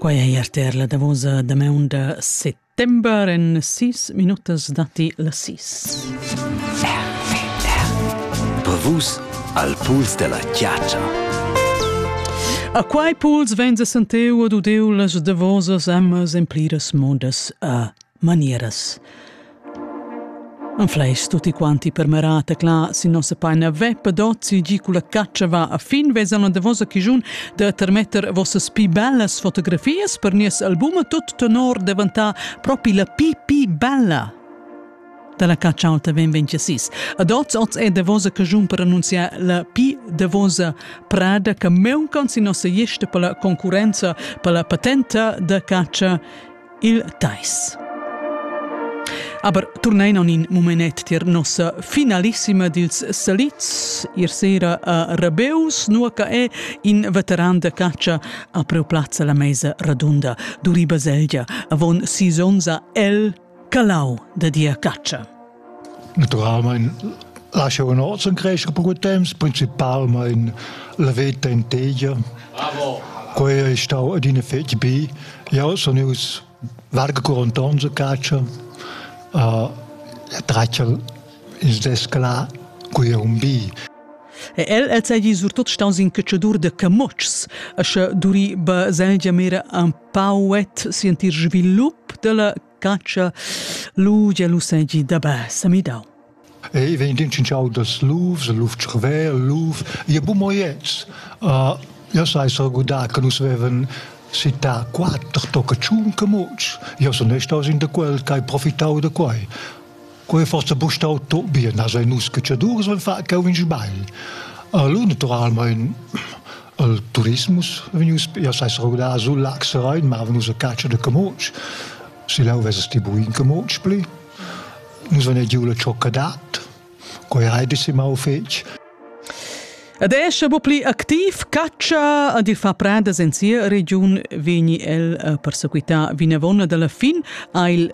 Quai è er ter la davosa damaun da settember. En sis minutas datti las sis. Brevus al puls della chiaccia. A quai puls vegn a senteu ad udeu las davosas ammas en pliras modas a manieras. Anfleis tutti quanti per merar tecla sin nossa paina veppa dozi gi culla caccia va a fin vesan a davosa chigiun da termetter vossas pi bellas fotografias per nies album tut tenor devantà propi la pi pi bella. Dalla caccia alta ven 26. Ad oz oz è davosa cagiun per annunziar la pi davosa prada che meuncon sin nossa ieste per la concurenza per la patenta da caccia il Teis. Aber turnein on in mumenet tier nossa finalissima dils salits, ir sera a Rabeus, nua che è in veteran de caccia a preu plazza la meisa radunda, duri baselgia, avon sis onza el calau de dia caccia. Naturalmein lascha un ozon crescer per quei temps, principalmein la veta in tegia. Quei ei stau adina fetg bi. Jau sun ius varga 40 onns a caccia. Uh, e traccia is desclà qui è un bi. E el el seigi surtut staus in cacciadur de camotschs, e sche duri ba seigi mira un pauet sentir svilup della Catscha lu gia lu segi da bassa midau. Ei vegn din cinciau das lufs, luf tschrver, luf, je bu moiets. Uh, io sai sargudar che nus veven città quattro tocca tschun che mots. Io sono staus in da quel, che hai profitau da quai. Quei fossa bu stau tot bien, as ein nus catschadurs van far cau in sbagl. Allora naturalmein il turismus vegnius ja sai rugdar sul Lachsrein, ma venus a caccia de Camotsch. Si lau vess ti bu in Camotsch pli. Nus van giu la cioccadat, quei hai dis im au fetg. Ed è sche bu pli activ caccia ad il far prendas en sia regiun vegni el a persequità vinavon dalla fin ha il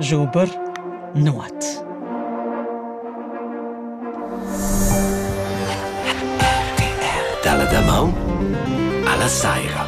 Schuber, nuot. RTR dalla damaun alla saira.